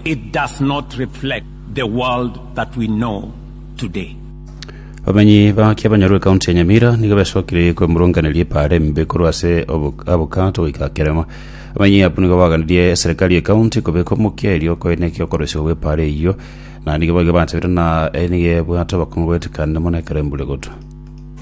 It does not reflect the world that we know today. Abamenyi ba Kiabanyoro ekaunti ya Nyamira nigo besokire kwemurunganeria epaara embe korwa ase obo- abokato goika kerema. Abamenyi abwo nigo baganirie eserekari y'ekaunti kobeka omokia erio okoenekia okoroisiwa gw'epaara eyio na nigo baiga banchabire na nigo ebwate obokongo goetekanire mono ekero embura egotwa.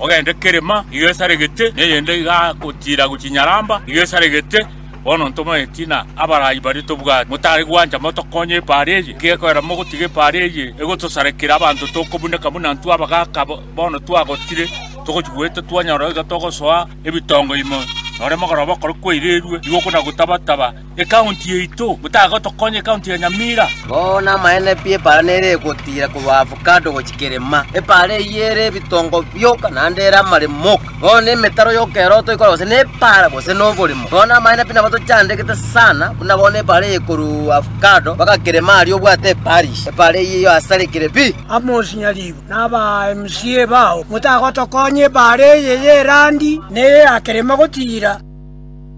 Ogende kerema iga esaregete, na eyende iga gotiira gochinyaramba iga esaregete. Bono ntomaeti na abaraai baria tobwate, motare gwancha motokonye epaari eye. Gekorera mogotiga epaari eye egotosarekera abanto tokobuneka buna intwe abagaaka bono twagotire, togochigwete twanyora iga togosoa ebitongo ime, nore mogoroba okore kwairirwe igoko na gotaba-taba. Ekaunti yaito, motagotokonya ekaunti ya Nyamira. Bono amaene pi epaara nere egotira korwa Avocado gochia Kerema. Epaara eyio ere ebitongo bioka naende ere amaremo oka. Bono nemetaro y'okeroto ekora gose nepaara gose noboremo. Bono amaene pi nabo tochandegete sana, buna bono epaara eye korwa Avocado mpaka Kerema aria obwate eparish. Epaara eyio eyo asarekire pi. Amos Nyaribo na aba MCA bao, motagotokonya epaara eye y'erandi neye ya Kerema gotira.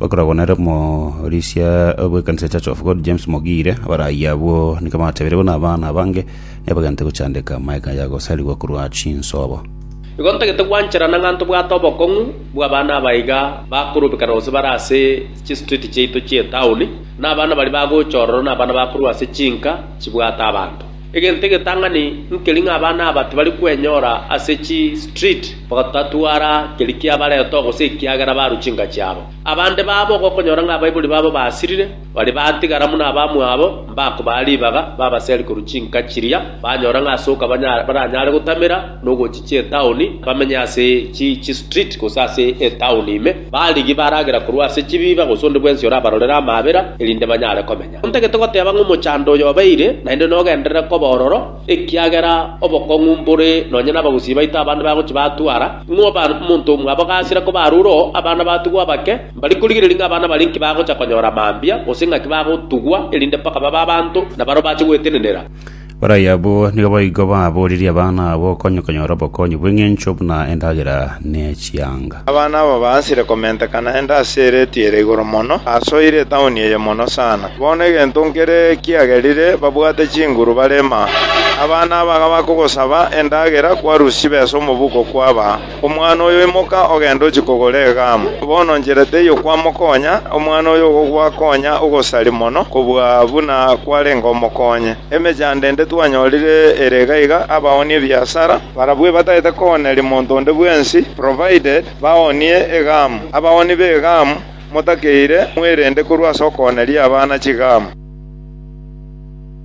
Bakoragwa nere omorisia bw'ekanisa ya Church of God James Mogire, abarayia abwo nigo batebirie buna abana abange nebagente gochandeka amaega ya gosarigwa korwa chinsobo. Igo ntagete gwancherana ng'a ntobwate obokong'u bw'abana aba iga bakorubekana gose bare ase chistriti chiaito chi'etaoni, na abana baria bagocha ororo nabana bakorwa ase chinka chibwate abanto. Egento egetang'ani nkeri ng'a abana aba tibari kwenyora ase chi street bagatatwara keri kiabareta oo gose ekiagera barwa chinka chiabo. Abande babo gokonyora ng'a abaibori babo basirire, baria batigara buna abamwabo mbakobaa ribaga babaseri korwa chinka chiria banyora ng'a ase okabanyara baranyare gotamera nogochichia etaoni bamenye ase chi chi street gose ase etaoni ime. Barigia baragera korwa ase chibiiba gose onde bwensi orabarorere amaabera erinde banyare komenya. Ontagete goteba ng'a omochando oyo obeire naende nogenderere koba ororo, ekiagera obokong'u mbore nonye nabagusii baito abande bagochia batwara, ng'a obe omonto omwabo gasire koba arure oo abana batigwe abake, mbari korigereria ng'a abana baria inki bagocha konyora mambia, gose ng'aki bagotugwa, erinde mpaka babe abanto, na barabwo bache gwetenenera. Baria abwo nigo boigo babooririe abana abo okonye konyora obokonyi bw'engencho buna endagera ne chianga. Abana abo baasire komentekana ende ase erate ere igoro mono, ase oire etauni eye mono sana. Bono egento nkere kiagerire, babwate chinguru barema. Abana aba bakogosaba endagera, kwarusia chibesa omobuko kwabaa. “Omwana oyo, imoka ogende ochie kogora egaamu. Bono nchera teiyo kwamokonya, omwana oyo ogokwa konya ogosari mono kobua buna kwarenge omokonye. Emechando ende twanyorire ere iga iga abaoonie ebiasara, barabwo batagete kooneria monto onde bwensi, provided baoonie egaamu. Abaooni b'egaamu, motakeire, mwerende korwa ase okooneria abana chigaamu.”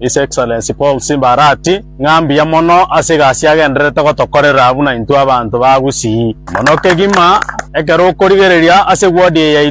His Excellency Paul Simba Arati, ng'a mbuya mono ase egasi agendererete gotokorera buna intwe abanto ba Gusii. Mono kegima ekero okorigereria ase ward eye yaito,